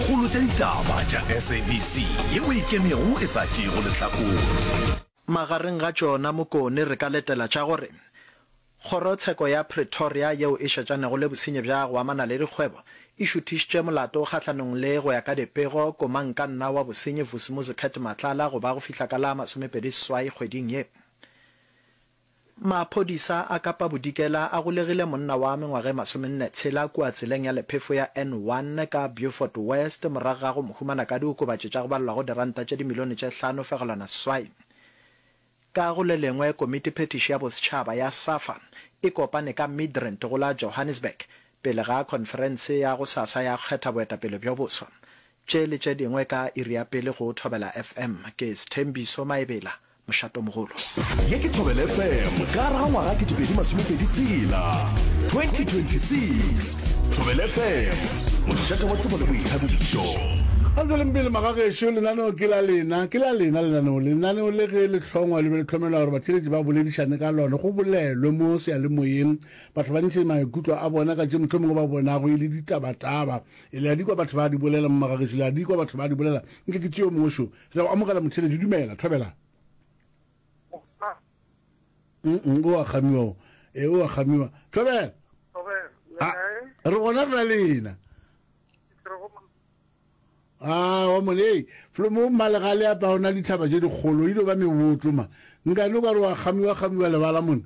Kgolo tša ditaba tša SABC ye o ikemego e sa tšeego lehlakore. Magareng ga tšona Mokone re ka letela tša gore Kgorotsheko ya Pretoria yeo e šetšanego le bosenyi bja go amana le dikgwebo e šuthišitše molato kgahlanong le, go ya ka dipego, komankanna wa bosenyi Vusimuzi Cat Matlala go ba go fihla ka la masomepedi seswai kgweding ye. Maphodisa a Kapa Bodikela a golegile monna wa mengwaga e masomenne tshela kua tseleng ya lephefo ya N1 ka Beaufort West morago ga go mo humana ka diokobatši tša go balelwago diranta tše dimilione tše hlano fegelwana seswai. Ka go le lengwe, komiti phethiši ya bosetšhaba ya Safa e kopane ka Midrand go la Johannesburg pele ga khonferense ya gosasa ya go kgetha boetapele bjo boswa. Tše le tše dingwe ka iri ya pele go Thobela FM. Ke Sthembiso Maebela mošatomogolo. Ye ke Thobela FM ka ra ngwaga ke dipedi masomepedi tsela 2026 Thobela FM mošate wa tsebo le boithabišo. Ga re tšweleng pele magagešo lenaneo ke la lena ke la lena lenaneo lenaneo le ge le hlongwa le be le tlhomelwa gore batšheletši ba boledišane ka lone go bolelwe mo seyalemoyeng batho ba ntšhe maikutlo a bona ka tše motlho mongwe ba bonago e le ditabataba e le a dikwa batho ba di bolela mo magagešo le a dikwa batho ba di bolela nke ke tšeo mošo Re a go amogela motheletši. Dumela, thobela. Mm-mm, o a kgamiwa o. E, o a kgamiwa. Thobela. A, re gona re na le ena. A, wa monei. Flomo malegale a pa o na dithaba tše dikgolo, e ilo ba meboto ma. Nkane o ka re o a kgamiwa-kgamiwa lebala mona.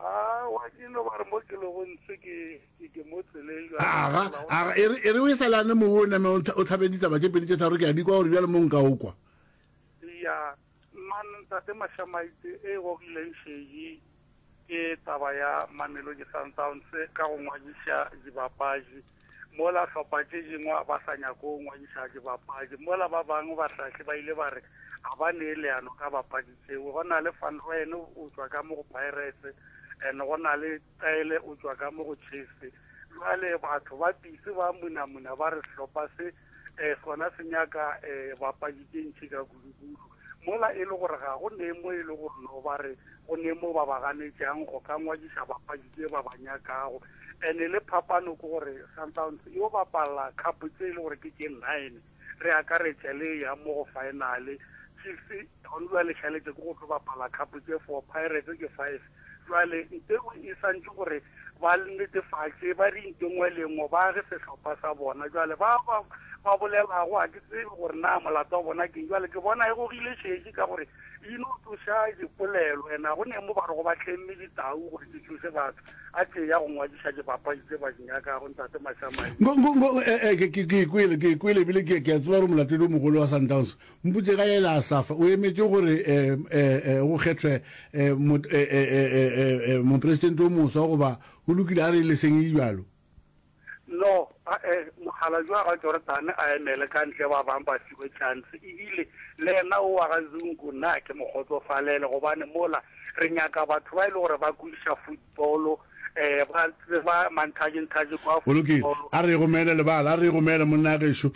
Aowa, ke no ba re mo ke lego ntse ke, ke, ke mo tseleng jwale. Aga, aga, e re, e re o e sa lane mowe o name o, o tlhabe ditaba tše pedi tše tharo, ke a di kwa gore bjale mo nka o kwa. Ya, man, Tate Mashamaite, e e gogileng šedi ke taba ya Mamelodi Sundowns ka go ngwadiša dibapadi. Mola hlopha tše dingwe a ba sa nyake go ngwadiša dibapadi mola ba bangwe bahlahli ba ile ba re ga ba nee leano ka bapadi tšeo. Go na le Van Rooyen o tšwa ka mo go Pirates and go na le Cele o tšwa ka mo go Chiefs. Bjale batho ba pitse ba munamuna ba re sehlopha se eh, sona se nyaka eh, bapadi tše ntšhi ka kudukulu mola e le gore ga go ne mo e le gore no ba re go ne mo ba ba ganetšang go ka ngwadiša bapadi tše ba ba nyakago ene le phapano ke gore sundowns yo bapalla cup tse e le gore ke tše nine re akaretša le ya mo go finale chiefs gone ba lešaletse ke go tlo bapala cup tše four pirates ke five Bjale, nke o e swantšhe gore ba netefatše, ba ri nke nngwe le nngwe ba age sehlopha sa bona. Bjale, ba, ba, ba bolelago, ga ke tsebe gore na molato wa bona ke eng. Bjale, ke bona e gogile šešo, ka gore e no tsoša dipolelo. And ga go ne mo ba re go ba tlemme ditau gore di tsoše batho. A tee ya go ngwadiša dibapadi tse ba di nyakago, Ntate Mashamaile. Ngo, ngo, ngo, ee, ee, ke, ke, ke e kwele, ke e kwele, ebile ke, ke a tseba gore molatedi o mogolo wa Sundowns Mpotše ga yela Asafa, o emetše gore go kgethwe mopresidente yo moswa, goba go lokile a re e le seng e bjalo? No, ga-e, mogala yo wa ga Jordane a emele ka ntle, ba bang ba fiwe tšhanse. Ebile le yena wo wa ga Zungu, na ke mo kgotsofalele, gobane mola re nyaka batho ba e le gore ba kwešiša Paulo, ba tseba manthaje-nthaje kwa. Go lokile. A re e gomele, lebala. A re e gomele, monna wa gešo.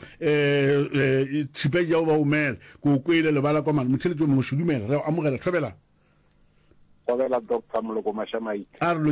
Tšhipa ja o ba gomele. Ke o kwele, lebala kwa mane. Motheletši yo mongwe, šo dumela. Re a go amogela. Thobelang. Kgobela, Doctor Moloko Masha Maite. A re.